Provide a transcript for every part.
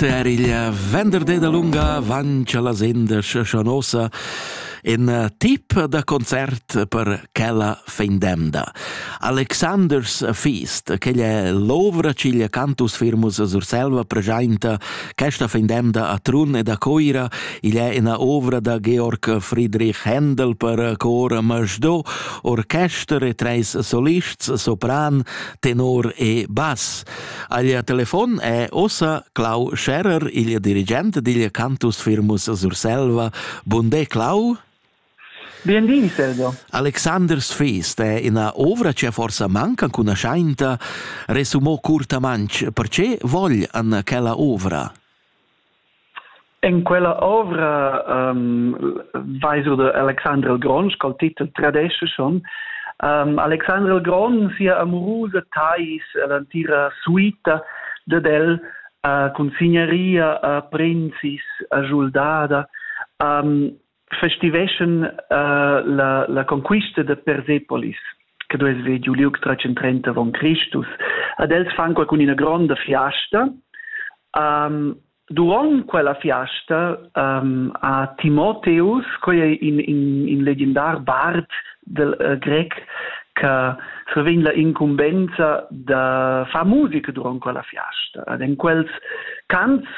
RTR il venderdi da lunga vancia la sendes Schanosa in eh, tip da concert per quella fin d'emda. Alexanders Feast, che è l'ovra ciglia cantus firmus Surselva presenta questa fin d'emda a Trun ed a Coira, igl è una ovra da Georg Friedrich Händel per cor Masdo, orchester e treis solists, sopran, tenor e bass. Aglia telefon è ossa Clau Scherer, il dirigent digl cantus firmus Surselva. Bunde Clau. Buondì, Silvio. Alexander Sfist è ina ovra che forsa manca cunaschainta, resumò curtamantsch, perché vogl an quella ovra? En quella ovra um, vais du da Alexandra il Grond, col titel Tradesce schon. Um, Alexandra il Grond sia amurusa tais l'antira suita de del uh, con signaria a uh, princis a Giuldada. Um, festiveschan uh, la, la conquista da Persepolis che duess ver giu liug 330 avon Christus. Ad els fan qualcun ina gronda fiasta. Um, Duront quella fiasta um, ha Timotheus, quei è in, in, in legendar bard del uh, grec, che survegn la incumbenza da far musica durant quella fiasta. Ad en quels cants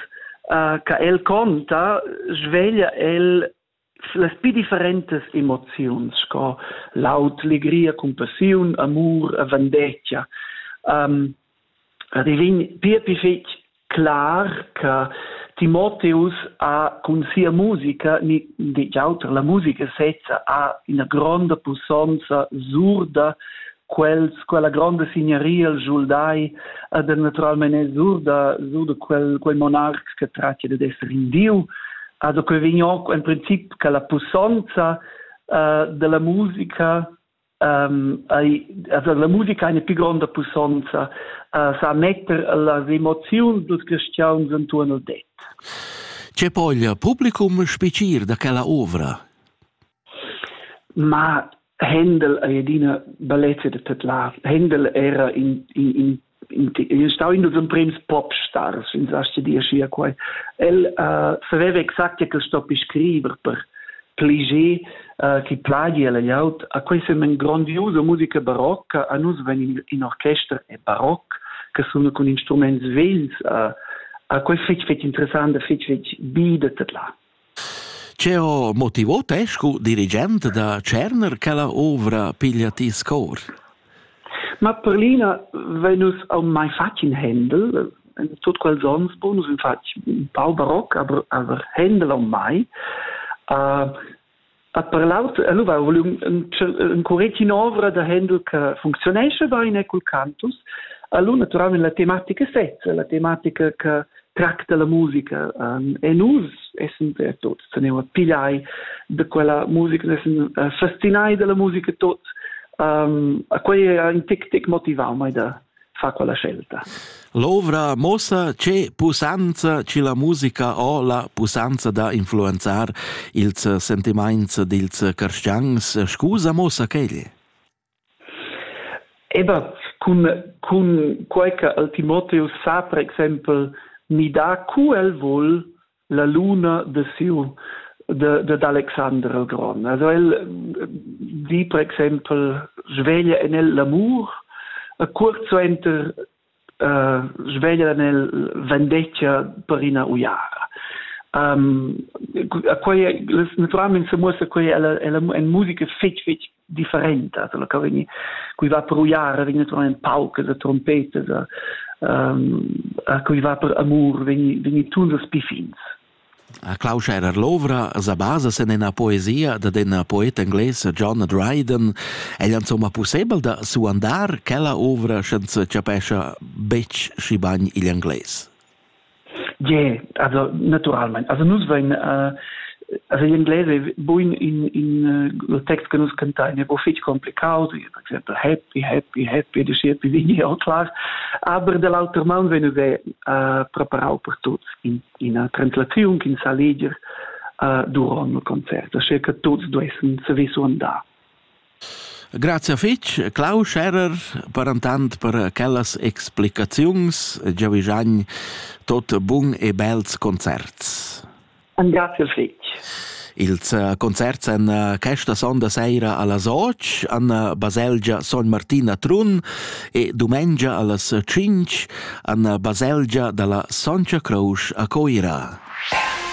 uh, che el conta, sveglia el las più differentes emozioni, sco laut, legria, compassione, amor, vendetta. Um, divin più più fitch clar che Timotheus ha con sia musica, ni di auter, la musica sezza ha una grande pussonza, surda, quels quella gronda signaria el schuldai ad naturalmein è sur da sur da quel quel monarc che trattia ded esser in diu also que vegn auch en princip che la pussonza uh, della musica um, ai, also la musica eine più gronda pussonza uh, sa metter las emozioni dos cristians intorno al det. C'è poi il pubblicum special da quella ovra? Ma Händel ei adina bellezia da tedlar. Händel era in, in, in, in stau in dos emprems popstars, ins astga dir schia quai. El uh, saveva exact che stoppi scriver per pliger uh, chi plagi el aut. A quei sem en grandiosa musica barocca, a nus ven in, in orchester e baroc che sono con instruments vegls. Uh, a quei fetg fetg interessant, fetg fetg bi da tedlar. Che ho motivo te scu dirigent da tscherner quella ouvra piglia ti scor? Ma per l'ina vegn nus mai fatg in Händel. In tut quels ons, bon, nus in fatg un pau baroc, aber, aber Händel on mai. Uh, dat per l'aut e lu va volum in curretin ovra da Hendel che funcziunesce bene cul cantus a lu naturalmente la tematica sezza la tematica che tracta la musica e nus essen per tot se ne pigliai de quella musica essen fascinai della musica tot a quei è un tic tic motivau mai da fa quella scelta. L'ovra mossa che pusanza che la musica o la pusanza da influenzar ils sentiments dils carstians scusa mossa quegli. Ebat cun cun quei che el Timotheus sa per exempel ni da cu el vul la luna de siu de, de Alexander il Gron. Also el di per exempel sveglia en el l'amur e curt suenter uh, sveglia en el vendeccia per ina uiara. Um, quei naturalmente se muossa quei ella ella en musica fetg fetg differentas, quella che vegni, cui va per uiara vegn naturalmente paucas a trompetas, a, um, a cui va per amur vegni, vegni tuns a spifins. A Klaus Scherer l'ovra sa basa sen ina poesia da den poet engles John Dryden. È insomma possibel da suandar quella ovra senza capescia betg schi bagn igl engles? Ie, also naturalmein. Also nus vein äh, also in inglese è buin in in uh, text che nus cantain è fitg complicato per esempio happy happy happy di shit vi vini all class aber dall'alter man wenn wir uh, preparau per tuts in in una translazione in saliger uh, durant il concert, so che tuts duessen savisu andar. Grazia fetg Clau Scherrer per intant per quellas explicaziuns. Giavischagn tot bun e bels concerts. Grazie fetg. Ils eh, concerts en eh, questa sonda sera alla Soc, an eh, baselgia Son Martin a Trun e dumengia allas 5 an baselgia dalla Soncia Croce a Coira.